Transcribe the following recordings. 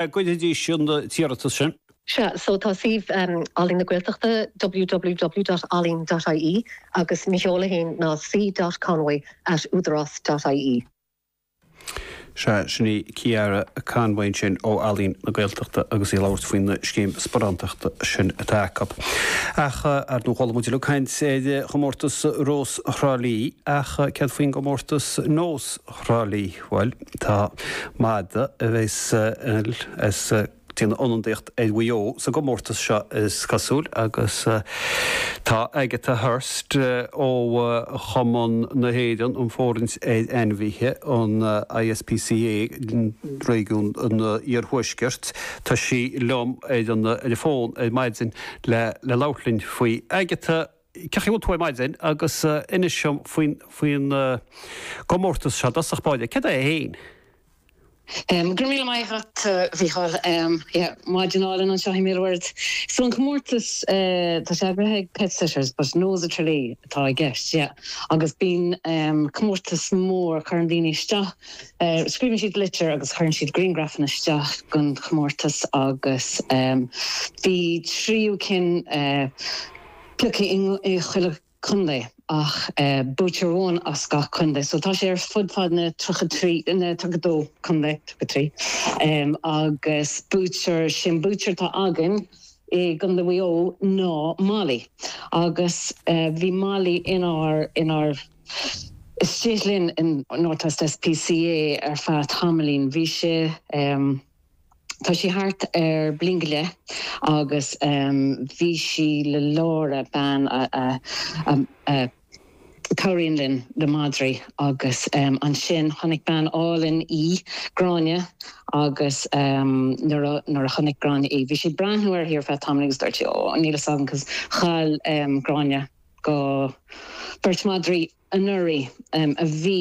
a gcuirfidís an t-iarratas sin? Sea, so tá suíomh Ealaín na Gaeltachta, www.ealaín.ie, agus mo sheoladh féin ná c.conway@udarás.ie. Sea, sin í Ciara Conway ansin ó Ealaín na Gaeltachta agus í ag labhairt faoin scéim sparántachta sin atá acu. Ach, ar ndóigh, chuala muid uilig caint ar chomórtas Rós Thrá Lí, ach céard faoin gcomórtas Nós? Thrá Lí. Bhuel, tá madadh a bheas ag déanamh ionadaíocht ar Mhaigh Eo sa gcomórtas seo is cosúil agus tá Agatha Hurst ó chumann na hÉireann um Fhóirithint ar Ainmhithe, an ISPCA, réigiún an iarthuaiscirt, tá sí liom ar an fón ar maidin le labhairt linn faoi. Agatha! Cén chaoi a bhfuil tú ar maidin agus inis dom faoin gcomórtas seo. I dtosach báire, céard é féin? Go raibh míle maith agat a Mhíchíl. Yeah, maidin álainn anseo i mBéal an Mhuirthead. So an comórtas, tá sé eagraithe ag Pet Sitters but Nós of Tralee atá i gceist, yeah. Agus bíonn comórtas mór, cuireann daoine isteach, scríobhann siad litir agus cuireann siad griangrafanna isteach don chomórtas agus bhí trí cinn, pioctha i chuile chontae ach buaiteoir amháin as gach contae so tá sé ar fud fad na 33, na 32 contae, 33 agus buaiteoir, sé'n buaiteoir atá againn i gContae Mhaigh Eo ná Molly agus bhí Molly inár, inár, istigh linn in North West SPCA ar feadh tamaillín, bhí sé. Tá sí thart ar bhliain go leith agus bhí sí le Laura, bean a chabhraíonn linn le madraí agus ansin chonaic bean álainn í, Gráinne, agus nuair a chonaic Gráinne í, bhí sí ag breathnú uirthi ar feadh tamaill agus dúirt sí, Ó, níl fhios agam cause chaill Gráinne dhá, beirt madraí anuraidh a bhí.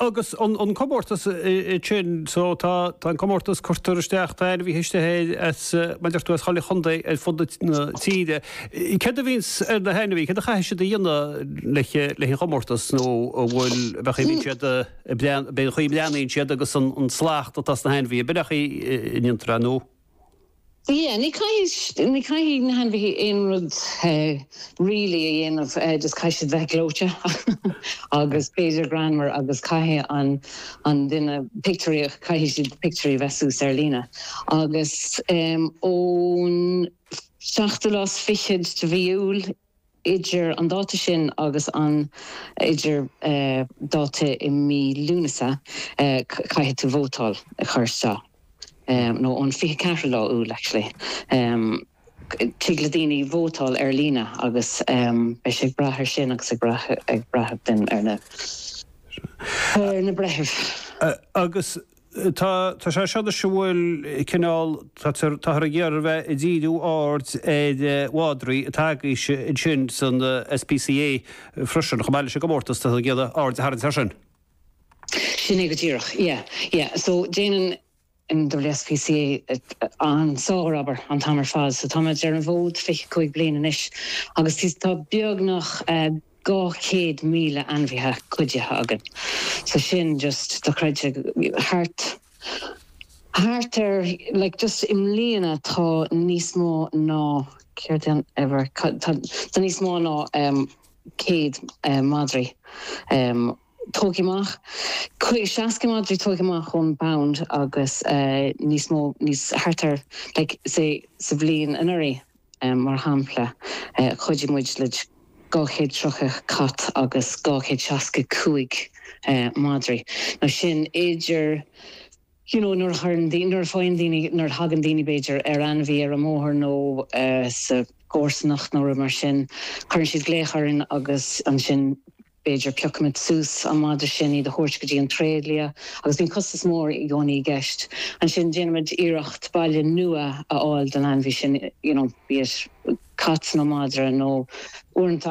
Agus an comórtas ansin so tá an comórtas cuirtear isteach tá ainmhithe istigh air mar a deir tú as chuile chontae ar fud na tíre. Céard a bhíonns ar na hainmhithe? Céard a chaithfidh siad a dhéanamh leis an gcomórtas nó an bhfuil meas tú an mbíonn siad an é an chaoi a mbreathnaíonn siad agus an slacht atá sna hainmhithe meas tú cén chaoi a ndéantar é nó? Yeah, ní caithfidh, ní caithfidh na hainmhithe aon rud really a dhéanamh, just caithfidh siad bheith gleoite agus b'fhéidir greannmhar agus caithfidh an, an duine, pictiúirí, caithfidh siad pictiúirí a bheith suas ar líne agus ón seachtú lá is fichead de mhí Iúil, Idir an dáta sin agus an idir dáta i mí Lúnasa caithfidh tú vótáil a chur isteach, nó ón 24 lá Iúil actually. Tig le daoine vótáil ar líne agus beidh sé ag brath air sin agus ag brath ar na breithimh. Agus Tá, tá sé seo anois a bhfuil cineál, táthar ag iarraidh bheith ag díriú aird ar mhadraí atá agaibhse ansin san SPCA freisin, chomh maith leis an gcomórtas, táthar ag iarraidh aird a tharraingt air sin. Sin é go díreach, yeah, yeah. So déanann an WSPCA an sárobair an t-am ar fad. So tá muid ar an bhfód fiche cúig bliain anois agus tá beagnach, eh, 200,000 ainmhithe cuidithe againn so sin just dochreidte thart thart ar like just i mbliana tá níos mó ná céard é an ever tá níos mó ná 100 madraí tógtha amach, 60 madraí tógtha amach ón bPound agus níos mó, níos, thart ar, like, say, sa bhliain anuraidh, mar shampla, chuidigh muid le 200 tríocha cat agus 200 seasca cúig madraí. Now sin idir, you know, nuair a chuireann daoine, nuair a faigheann daoine, nuair a thagann daoine, b'fhéidir, ar ainmhí ar an mbóthar nó sa gcomharsanacht nó rud mar sin, cuireann siad glaoch orainn agus ansin, b'fhéidir piocfaimid suas an madra sin, é a thabhairt go dtí an tréidlia agus bíonn costas mór i gcónaí i gceist. Ansin déanaimid iarracht baile nua a fháil don ainmhí sin, you know, be it cat nó madra nó uaireanta.